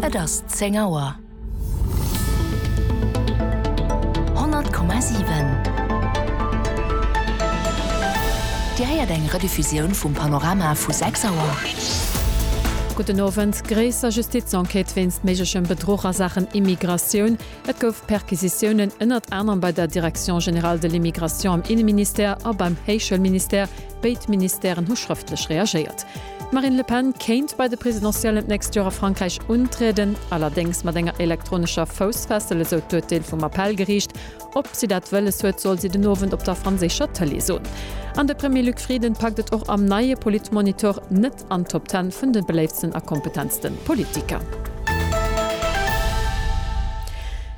Et ass zéng Auer. 100,7 Dir héiert eng Rediffusioun vum Panorama vu 6 Auer. Gudden Owend, Gréisser Justizenquête wéinst méiglechem Bedruch a Saachen Immigratioun, Et gouf Perquisitiounen ënnert anerem bei der Direction générale de l'Immigration am Inneministère a beim Héichschoulministère, béid Ministèren hu schrëftlech reagéiert. D'Marine Le Pen kéint bei de Presidentiellen d'nächst Joer a Frankräich untrieden, allerdéngs mat enger elektronescher Foussfessel, esou d'Urteel vum Appellgeriicht. Ob si dat wëlles huet, soll si den Owend op der franséischer Tëlee soen. An de Premier Luc Frieden packt et och am neie Politmonitor net an d'Top Ten vun de beléiftsten a kompetentste Politiker.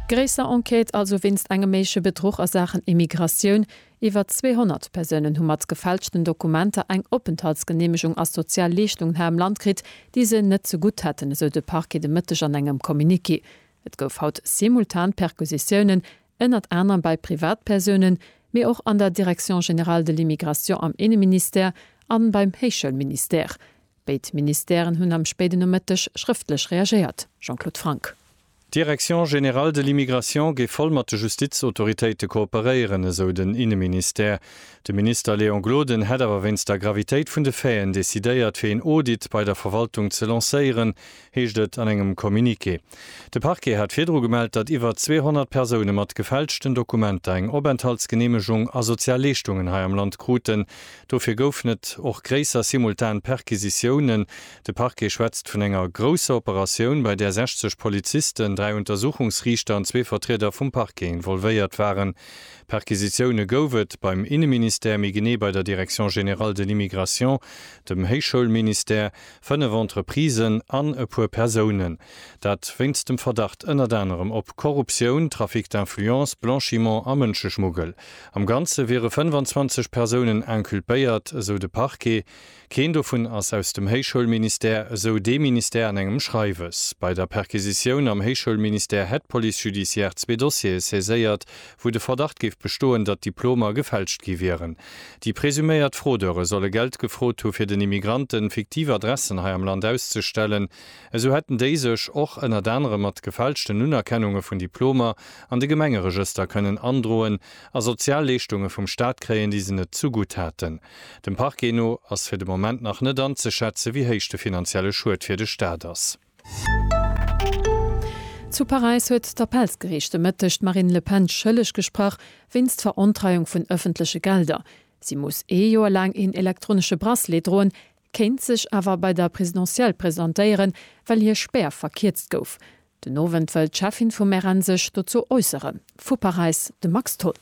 Gréisser Enquête also wéinst engem méigleche Bedruch a Saachen Immigratioun. Iwwer 200 Persounen hu mat gefälschten Dokumenter eng Openthaltsgeneemegung a sozial Leeschtungen hei am Land kritt, déi se net ze gutt hätten, esou de Parquet de Mëtteg an engem Communiqué. Et gouf haut simultan Perquisitiounen, ënnert anerem bei Privatpersounen, mee och an der Direction générale de l'immigration am Inneministère a beim Héichschoulministère. Béid Ministèren hunn am spéiden Nomëtteg schrëftlech reagéiert. Jean-Claude Franck. D'Direction générale de l'immigration géif voll mat de Justizautoritéite kooperéieren, esou den Inneministère. De Minister Léon Gloden hätt awer wéinst der Gravitéit vun de Faiten decidéiert, fir een Audit bei der Verwaltung ze lancéieren, heescht et an engem Communiqué. De Parquet hat virdru gemellt, datt iwwer 200 Persoune mat gefälschten Dokumenter eng Openthaltsgeneemegung a sozial Leeschtungen hei am Land kruten. Dofir goufen et och gréisser simultan Perquisitiounen. De Parquet schwätzt vun enger grousser Operatioun, bei där 60 Polizisten, dräi Untersuchungsriichter an zwee Vertrieder vum Parquet involvéiert waren. Perquisitioune gouf et beim Inneministère, méi genee bei der Direction générale de l'immigration, dem Héichschoulministère, Fënnef Entreprisen an e puer Persounen. Dat wéinst dem Verdacht ënnert anerem op Korruptioun, Trafic d'influence, Blanchiment a Mënscheschmuggel. Am Ganze wiere 25 Persounen inculpéiert, esou de Parquet. Keen dovun ass aus dem Héichschoulministère, esou dee Ministère an engem Schreiwes. Bei der Perquisitioun am Héichschoulministère hätt d'Police judiciaire zwee Dossiere saiséiert, wou de Verdacht géif bestoen, datt Diplomer gefälscht gi wieren. Déi presuméiert Fraudeure solle Geld gefrot hu fir den Immigranten fiktiv Adressen hei am Land auszestellen. Esou hätten déi sech och ënnert anerem mat gefälschten Unerkennunge vun Diplomer an de Gemengeregëster kënnen androen a sozial Leeschtunge vum Staat kréien, déi se net zugutt haten. Dem Parquet no ass fir de Moment nach net anzeschätze wéi héich de finanzielle Schued fir de Staat ass. Zu Paräis huet d'Appellsgeriicht de Mëtteg d'Marine Le Pen schëlleg gesprach wéinst Verontreiung vun ëffentleche Gelder. Si muss ee Joer laang een elektronesche Bracelet droen, kéint sech awer bei der Presidentielle presentéieren, well hir Spär verkierzt gouf. Den Owend wëll d'Cheffin vum RN sech dozou äusseren. Vu Paräis de Max Tholl.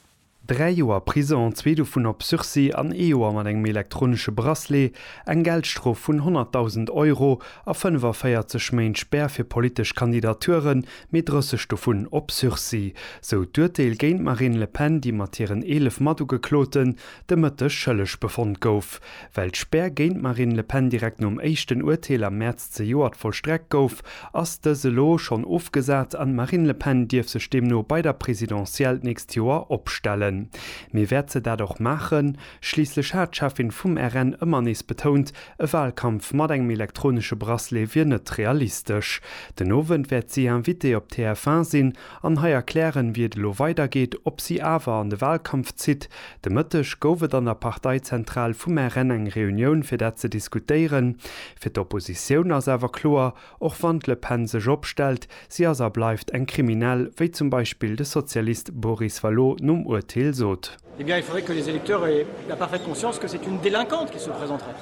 Dräi Joer Prison, zwee dovun op Sursis an ee Joer mat engem elektronesche Bracelet, eng Geldstrof vun 100.000 Euro a 45 Méint Spär fir politesch Kandidaturen, mee 30 dovun op Sursis, sou d'Urteel géint d'Marine Le Pen, déi mat hiren 11 Matugekloten de Mëtteg schëlleg befonnt gouf. Well d'Spär géint d'Marine Le Pen direkt nom éischten Urteel am Mäerz zejoert vollstreckt gouf, ass dës elo schonn ofgesat an d'Marine Le Pen dierf sech deemno bei der Presidentielle d'nächst Joer opstellen. Mee wäert se dat och maachen? Schliisslech hat d'Cheffin vum RN ëmmer nees betount, e Walkampf mat engem elektronesche Bracelet wier net realistesch. Den Owend wäert si Invitée op TF1 sinn an hei erklären, wéi et elo weidergeet, ob si awer an de Wahlkampf zitt. De Mëtteg gouf et an der Parteizentral vum RN eng Reunioun, fir dat ze diskutéieren. Fir d'Oppositioun ass awer kloer, och wann d'Le Pen sech opstellt, si ass a bleift eng Kriminell, wéi zum Beispill de Sozialist Boris Vallaud nom Urteel sot. Eh bien, il faudrait que les électeurs aient la parfaite conscience que c'est une délinquante qui se présenterait.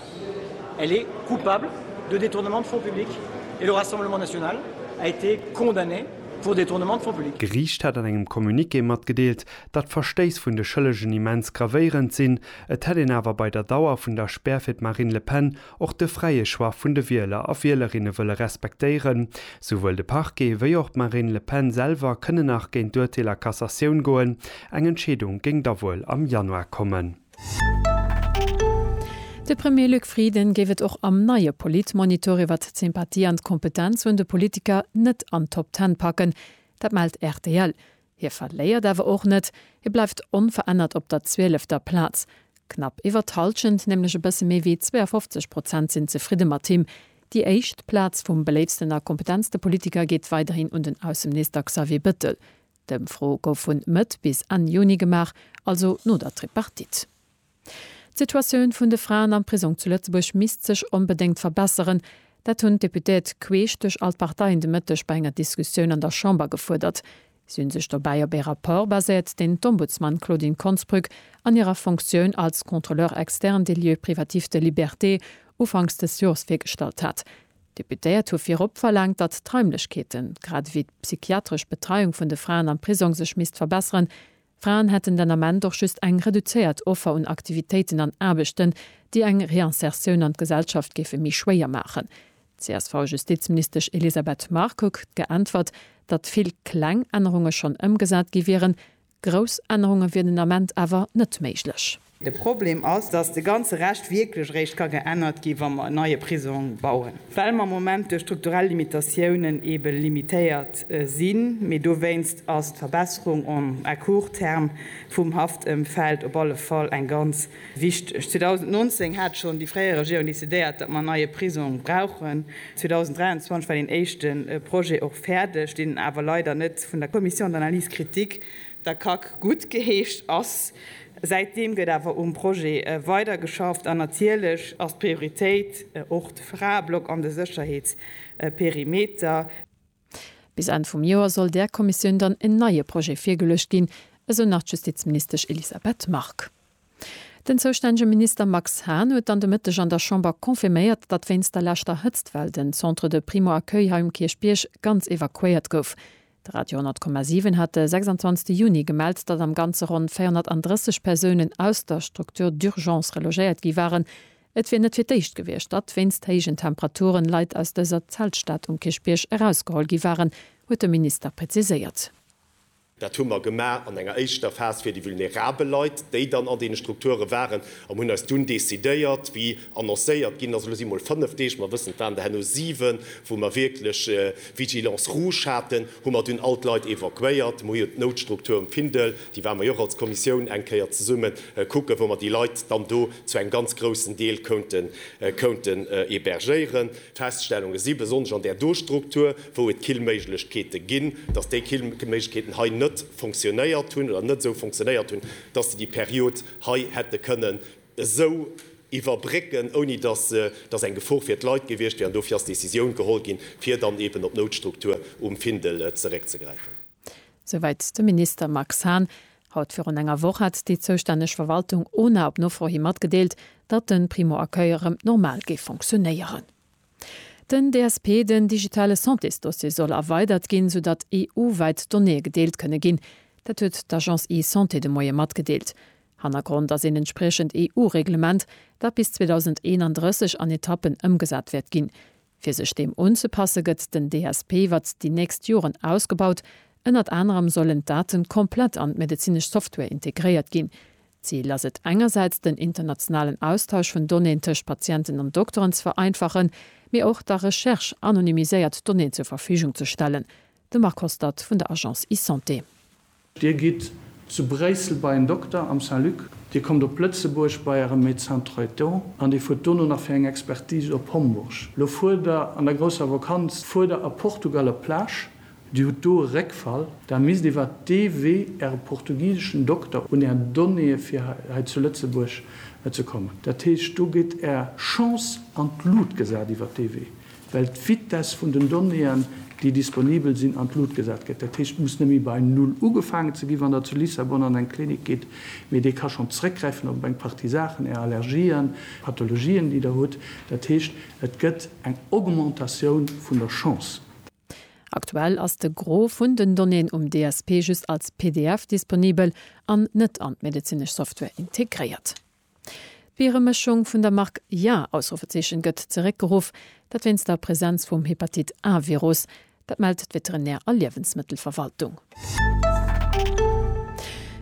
Elle est coupable de détournement de fonds publics et le Rassemblement national a été condamné pour détournement de fonds publics. D'Geriicht hätt an engem Communiqué matgedeelt, datt d'Verstéiss vun de Schëllegen immens gravéierend sinn. Et hätt een awer bei der Dauer vun der Spär fir d'Marine Le Pen och de fräie Choix vun de Wieler a Wielerinne wëlle respektéieren. Souwuel de Parquet wéi och d'Marine Le Pen selwer kënne nach géint d'Urteel a Cassatioun goen. Eng Entscheedung géing da wuel am Januar kommen. De Premier Luc Frieden géif et och am neie Politmonitor iwwert d'Sympathie an d'Kompetenz vun de Politiker net an d'Top Ten packen. Dat mellt rtl. Hie verléiert awer och net, hie bleift onverännert op der zwielefter Plaz. Knapp iwwer d'Hallschent, nämlech e bësse méi wéi 52 Prozent sinn zefridde mat him. Déi éischt Plaz vum beléiftsten a kompetentste Politiker geet weiderhin un den Ausseminister Xavier Bettel. D'Ëmfro gouf vun Mëtt bis Enn Juni gemaach, also no der Tripartite. D'Situatioun vun de Fraen am Prisong zu Lëtzebuerg misst sech onbedéngt verbesseren. Dat hunn d'Deputéiert queesch duerch all d'Parteien de Mëtteg bei enger Diskussioun an der Chamber gefuerdert. Si hunn sech dobäi op ee Rapport baséiert, deen d'Ombudsman Claudine Konsbrück an hirer Fonctioun als Contrôleur externe des lieux privatifs de liberté ufanks dës Jors virgestallt hat. D'Deputéiert hu virop verlaangt, datt d'Raimlechkeeten, grad ewéi d'psychiatresch Betreiung vun de Fraen am Prisong sech misst verbesseren, Fraen hätten den Ament och just eng reduzéiert Offer un Aktivitéiten an Aarbechten, déi eng Reinsertioun an d'Gesellschaft géife méi schwéier maachen. D'CSV-Justizministesch Elisabeth Margue krut geäntwert, datt vill kleng Ännerunge schonn ëmgesat gi wieren, grouss Ännerunge wieren den Ament awer net méiglech. De Problem ass, dass de ganze Rescht wierklech eréischt ka geännert ginn, wa mer en neie Prisong bauen, well mer am Moment duerch strukturell Limitatiounen eebe limitéiert sinn. Mee dowéinst ass d'Verbesserung en, à court terme vum Haftëmfeld op alle Fall eng ganz wichteg. 2019 hat schonn déi fréier Regierung decidéiert, datt mer en neie Prisong brauchen. 2023 war deen éischte Projet och fäerdeg, deen awer leider net vun der Commission d'analyse critique, Der Kack gutt geheescht ass. Säitdeem gëtt awer um Projet weider geschafft an natierlech ass d'Prioritéit och de Fraeblock an de Sécherheetsperimeter. Bis Enn vum Joer soll där Kommissioun dann en neie Projet virgeluecht ginn, esou nach d'Justizministesch Elisabeth Margue. Den zoustännege Minister Max Hahn huet dann de Mëtteg an der Chamber confirméiert, datt wéinst der leschter Hëtztwell den Centre de Primo-Accueil hei um Kierchbierg ganz evakuéiert gouf. De Radio 100,7 hat de 26 Juni gemellt, datt am Ganze ronn 430 Persounen aus der Structure d'urgence relogéiert gi waren. Et wier net fir d'éischt gewiescht, datt wéinst héijen Temperaturen Leit aus dëser Zeltstad um Kierchbierg erausgeholl gi waren, huet de Minister preziséiert. Dat hu mer gemaach an enger éischter Phas fir déi vulnerabel Leit, déi dann an deene Strukture waren, an hunn eis dunn decidéiert, wéi Annoncéiert ginn ass elo si mol 5 Deeg, mer wëssen et waren der herno 7, wou mer wierklech Vigilance rouge haten, hu mer dunn all d'Leit evakuéiert. Mer hu jo d'Noutstruktur um Findel, déi ware mer jo och als Kommissioun eng Kéier zesumme kucken, wou mer déi Leit dann do zu engem ganz groussen Deel kounten hebergéieren. D'Feststellunge si, besonnesch an där do Struktur, wou et Killméiglechkeete ginn, datt déi Killméiglechkeeten hei net fonctionnéiert hunn oder net esou fonctionnéiert hunn, datt se déi Period hei hätte kënnen esou iwwerbrécken, ouni dass dass eng Gefor fir d'Leit gewiescht wier. An dofir ass d'Decisioun geholl ginn, fir dann eeben op d'Noutstruktur um Findel zeréckzegräifen. Souwäit de Minister Max Hahn. Haut virun enger Woch hat déi zoustänneg Verwaltung, ona, op Nofro hi matgedeelt, datt de Primo-Accueil erëm normal géif fonctionéieren. Den DSP, den digitale Santésdossier, soll erweidert ginn, sou datt EU-wäit Donnéeë gedeelt kënne ginn. Dat huet d'Agence eSanté de Moie matgedeelt. Hannergrond ass een entspriechend EU-Reglement, dat bis 2031 an Etappen ëmgesat wäert ginn. Fir sech deem unzepasse gëtt den DSP iwwer déi nächst Joren ausgebaut. Ënnert anerem sollen d'Daten komplett an d'medezinesch Software integréiert ginn. D'Zil ass et, engersäits den internationalen Austausch vun Donnéeën tëscht Patienten an Dokteren ze vereinfachen, mee och der Recherche anonymiséiert Donnéeën zur Verfügung ze stellen. De Marc Hostert vun der Agence eSanté. Dir gitt zu Bréissel bei en Dokter am Saint-Luc, Dir kommt op Lëtzebuerg bei äre Médecin Traitant an Dir fuert dono nach fir eng Expertise op Homburg. Lo fuert Der an der grousser Vakanz fuert Der a Portugal op d'Plage Dir hutt do e Réckfall. Där misst iwwer dee Wee Äre portugiseschen Dokter un Är Donnéeë fir hei zu Lëtzebuerg ze kommen. Dat heescht, do gétt Är Chance an d'Lut gesat iwwer dee Wee, well d'Vitess vun den Donnéeën, déi disponibel sinn, an d'Lut gesat gëtt. Dat heescht, et muss net méi bei Null ugefaangen ze ginn, wann Der zu Lissabon an eng Klinik gitt, mee dee ka schonn zeréckgräifen op eng Partie Saachen, Är Allergien, Pathologien, déi Der hutt. Dat heescht, et gëtt eng Augmentatioun vun der Chance. Aktuell ass de Gros vun den Donnéeën um DSP just als pdf disponibel an net an d'medezinesch Software integréiert. D'Bieremëschung vun der Mark Ja! gëtt zeréckgeruff, dat wéinst der Presenz vum Hepatit-A-Virus. Dat mellt d'Veterinär a Liewensmëttelverwaltung.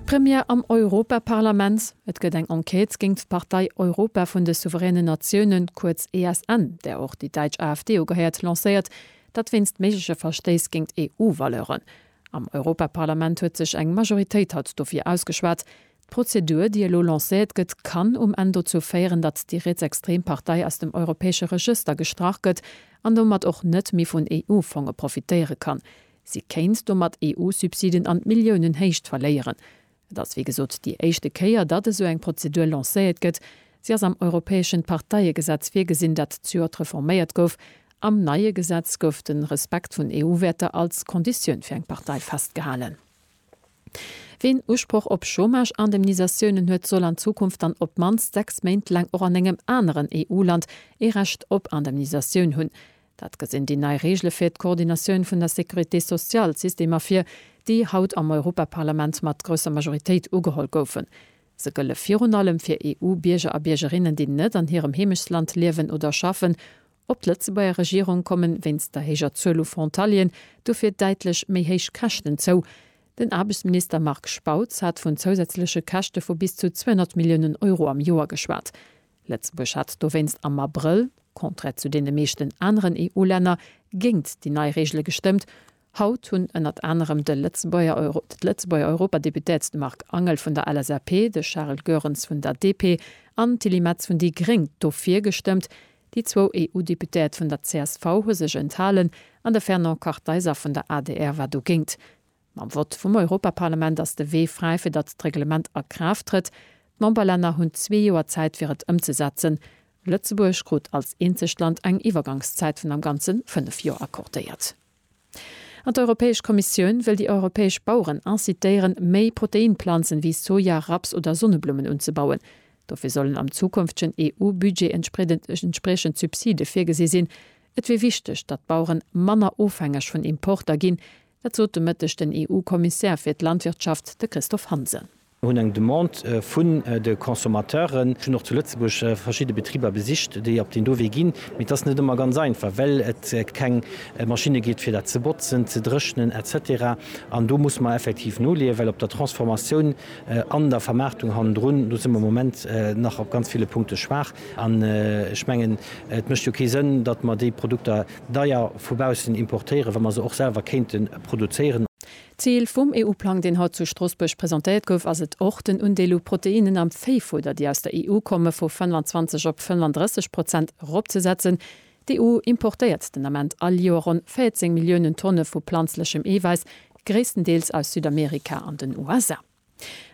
Première am Europaparlament, Et gëtt eng Enquête géingt d'Partei Europa vun de souveränen Natiounen, kuerz ESN, där och déi däitsch AfD ugehéiert, lancéiert. Dat wéinst méigleche Verstéiss géingt EU-Valeuren. Am Europaparlament huet sech eng Majoritéit haut dofir ausgeschwat. D'Prozedur, déi elo lancéiert gëtt, kann um Enn dozou féieren, datt déi rietsextrem Partei aus dem europäesche Regëster gestrach gëtt an domat och net méi vun EU-Fonge profitéiere kann. Si kéint domat EU-Subsiden an d'Milliounenhéicht verléieren. Et ass wéi gesot déi éischte Kéier, datt esou eng Prozedur lancéiert gëtt. Si ass am europäeschen Parteiegesetz virgesinn, dat d'jort reforméiert gouf. Am neie Gesetz gouf de Respekt vun EU-Wäerter als Konditioun fir eng Partei festgehalen. Ween Usproch op Chômage-Indemnisatiounen huet, soll an Zukunft dann op d'mannst sechs Méint laang och an engem aneren EU-Land ee Recht op Indemnisatioun hunn. Dat gesinn déi nei Reegele fir d'Koordinatioun vun der Sécurité sociale Systemer vir, déi haut am Europaparlament mat grousser Majoritéit ugeholl goufen. Se gëlle virun allem fir EU-Bierger a Biergerinnen, déi net an hirem Heemechtsland liewen oder schaffen. Op d'Lëtzebuerger Regierung komme wéinst der héijer Zuel u Frontalieren dofir däitlech méi héich Käschten zou. Den Aarbechtsminister Marc Spautz hat vun zousätzleche Käschte vu bis zu 200 Milliounen Euro am Joer geschwat. Lëtzebuerg hat dowéinst am Abrëll, contraire zu deene meeschten aneren EU-Länner, géint déi nei Reegele gestëmmt. Haut hunn ënnert anerem de Lëtzebuerger Europadeputéert, de Marc Angel vun der LSAP, de Charles Goerens vun der DP an d'Tilly Metz vun déi gréng dofir gestëmmt. Déi zwou EU-Deputéiert vun der csv hu sech enthalen an de Fernand Kartheiser vun der adr war dogéint. Mam Vott vum Europaparlament ass de Wee fräi, fir datt d'Reglement a Kraaft trëtt. D'Memberlänner hunn zwee Joer Zäit, fir et ëmzesetzen. Lëtzebuerg krut als eenzegt Land eng Iwwergangszäit vun am Ganze fënnef Joer accordéiert. An d'Europäesch Kommissioun wëll déi europäesch Baueren incitéieren, méi Proteinplanzen, wéi Soja, Raps oder Sonneblummen, unzebauen. Dofir sollen am zukünftegen EU-Budget entspriechend Subside virgesi sinn. Et wier wichteg, datt d'Baueren manner ofhängeg vun Importer ginn, Dat sot de Mëtteg den EU-Kommissär fir d'Landwirtschaft, de Christophe Hansen. Mir hunn eng Demande vun de Consommateuren. Ech hunn och zu Lëtzebuerg verschidde Betriber besicht, déi op deen do Wee ginn. Mee et ass net ëmmer ganz einfach, well et keng Maschinne gétt, fir dat ze botzen, ze dréchnen, etc. An do musse mer effektiv noleeën, well op der Transformatioun an der Vermaartung hannendrun, do si mer am Moment nach op ganz ville Punkte schwaach. An ech mengen, et mécht jo kee Sënn, datt mer déi Produkter, deier vu baussen importéieren, wa mer se och selwer kéinte produzéieren. Zil vum EU-Plang, deen haut zu Stroossbuerg presentéiert gouf, ass et och, den Undeel u Proteinnen am Véifudder, déi aus der EU komme, vu 25 op 35 Prozent eropzesetzen. D'EU importéiert den Ament all Joer ronn 14 Milliounen Tonne vu planzlechem Eewäiss, gréisstendeels aus Südamerika an den USA.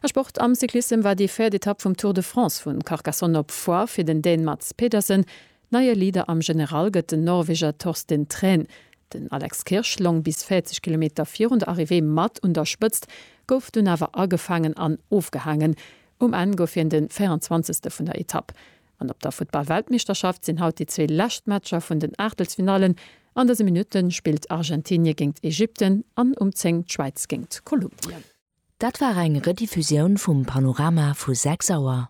A Sport, Am Cyclissem war déi véiert Etapp vum Tour de France vu Carcassonne op Foix fir den Dän Mads Pedersen. Neie Leader am General gëtt den Norweger Torsten Thrän. Den Alex Kirsch long bis 40 Kilometer virun der Arrivée mat un der Spëtzt, gouf dunn awer agefaangen an ofgehaangen. Um Enn gouf hien de 24. vun der Etapp. An op der Futtball-Weltmeeschterschaft sinn haut déi zwee lescht Matcher vun den Aachtelsfinallen. An dëse Minutte spillt Argentinie géingt Ägypten an um 10 d'Schwäiz géingt Kolumbien. Dat war eng Rediffusioun vum Panorama vu 6 Auer.